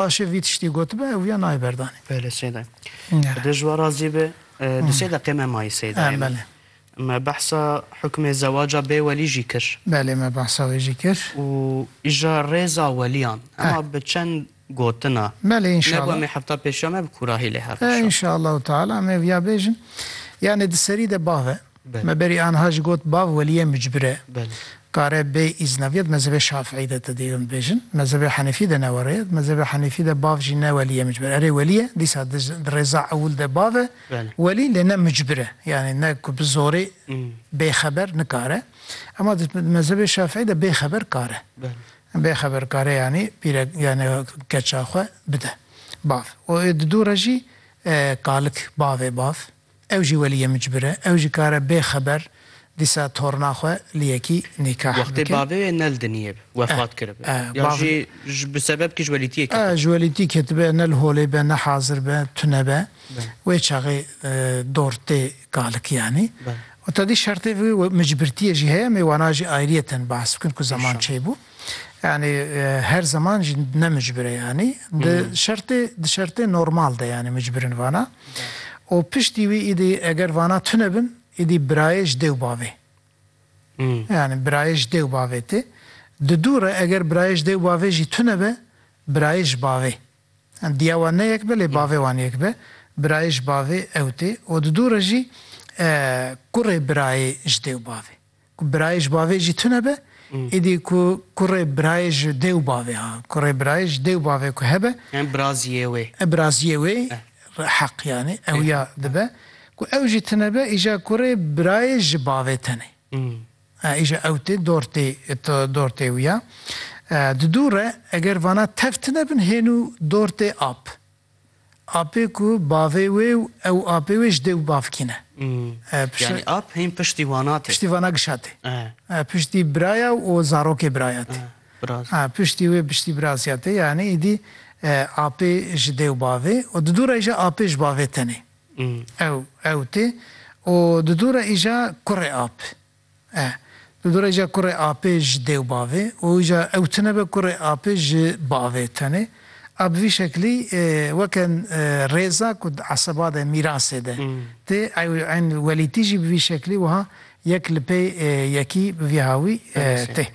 Paşê vî tiştî gotibe ew viya nayê berdanê. Belê Seyda. Bi dê ji we razî be. Di sê deqê me mayî Seydayê min. Belê. Me behsa hukmê zewaca bê welî jî kir. Belê me behsa wê jî kir. Û îja rêza weliyan. Ema bi çend gotina. Belê înşallah. Nebû em ê hefta pêşiya me bi kûrahî lê hev. Înşallahu teala em ê viya bêjin. Yanê di serî de bave. Me berî anha jî got bav weliyê micbir e. Kare bê îzna bîya di mezhebê şafîî de te dê hûn bibêjin. Di mezhebê henefî de ne were ye. Di mezhebê henefî de bav jî ne weliyê micbir e. Erê welî ye dîsa di rêza ewil de bav e welî lê ne micbir e. Yanî ne ku bi zorê bê xeber nikare. Ema di mezhebê şafîî de bê xeber kare. Bê xeber kare yanî pîre yanî keça xwe bide bav. Û di dû re jî kalik bavê bav Ew jî weliyê micbir e. Ew jî kare bê xeber dîsa torna xwe li yekî nîkah bike. Wextê bavê wê nel diniyê bi, wefat kiribe. Ya jî bi sebeb kî ji welîtiyê ketibe. Ji welîtî ketibe, nel holê be, ne hazir be, tune be. Wê çaxê dor tê kalikî yanî. Û tedî şertê vî micbirtiyê jî heye em ê wana jî ayriyeten behs bikin ku zeman çêbû. Yanî her zeman jî ne micbire yanî di şertê di şertê normal de yanî micbirin vana. û piştî wî îdî eger vana tune bin îdî birayê ji dê û bavê. Yanî birayê ji dê û bavê tê. Di dû re eger birayê ji dê û bavê jî tune be birayê ji bavê. Yanî diya wan ne yek be lê bavê wan yek be. Birayê ji bavê ew tê. û di dû re jî kurê birayê ji dê û bavê. Ku birayê ji bavê jî tune be, êdî ku kurê birayê ji dê û bavê ha, kurê birayê ji dê û bavê ku hebe. Yan biraziyê wê. Biraziyê wê heq yanî ew ya dibe. Ku ew jî tune be, îja kurê birayê ji bavê tenê. Îja ew tê dor tê dor tê wî ya. Di dû re eger vana tev tune bin hênû dor tê ap. Apê ku bavê wê û ew apê wê ji dêw bav kîne. Yanî ap hîn piştî wana tê. Piştî vana gişa tê. Piştî biraya û zarokê biraya tê. Piştî wê piştî birazya tê. Yanî îdî apê ji dêw bavê û di dû re îja apê ji bavê tenê ew ew tê û di dû re îja kurê ap. E. Di du rêja kurê apê ji dê û bavê û îja ew tune be kurê apê ji bavê tenê. A bi vî şeklî weke rêza ku di eseba de, mîrasê de tê, ew eyn welîtî jî bi vî şeklî wiha yek li pê yekî bi vî hawî tê.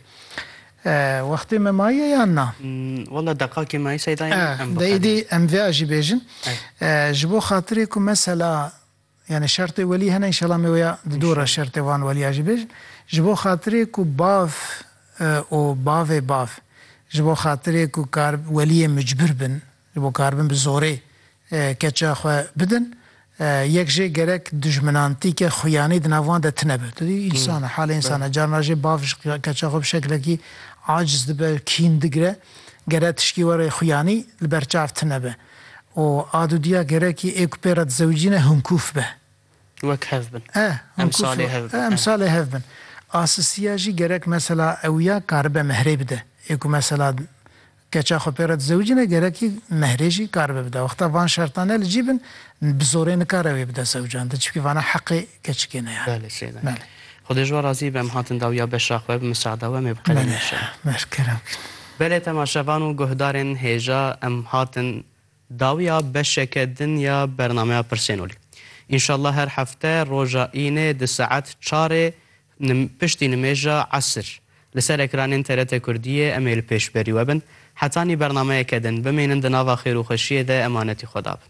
Wextê me maye yan na? Walla deqakê maye Seyda yan em bixerin. E. Dê îdî em vê a jî bêjin. E. Ji bo xatirê ku mesela. Yanî şertê welî hene înşela me wêya di dor e şertê wan welîya jî bêjin. Ji bo xatirê ku bav û bavê bav ji bo xatirê ku kar welîyê mucbir bin ji bo karibin bi zorê keça xwe bidin yek jê gerek dijminantîke xuyanî di nav wan de tine be. Tu dî însan e halê însan e carna jê bav ji keça xwe bi şeklekî aciz dibe kîn digire gere tişkî were xuyanî li ber çav tine be. û a dudiya gerekî ê ku pê re dizewicî ne hinkûf be. Wek hev bin. E, hinkûf e, emsalê hev bin. A sistiya jî gerek mesela ew ya karibe mehrê bide. Ê ku mesela keça xwe pê re dizewicî ne gerekî mehrê jî karibe bide. Wexta van şerta ne li cî bin bi zorê nikare wê bide zewcandin. Çimkî vana heqê keçikê ne ya. Belê. Xwedê ji we razî be em hatin dawiya beşa xwe bi miseada we em ê bi qelê neşin. Belê temaşevan û guhdarên hêja em hatin dawiya beşeke din ya bernameya Pirsênolî. Înşallah her hefte roja Înê di saet çarê piştî nimêja esir li ser ekranên TRT Kurdiyê em ê li pêşberî we bin. Hetanî bernameyeke din. Bimînin di nava xêr û xweşiyê de emanetî xwe dabin.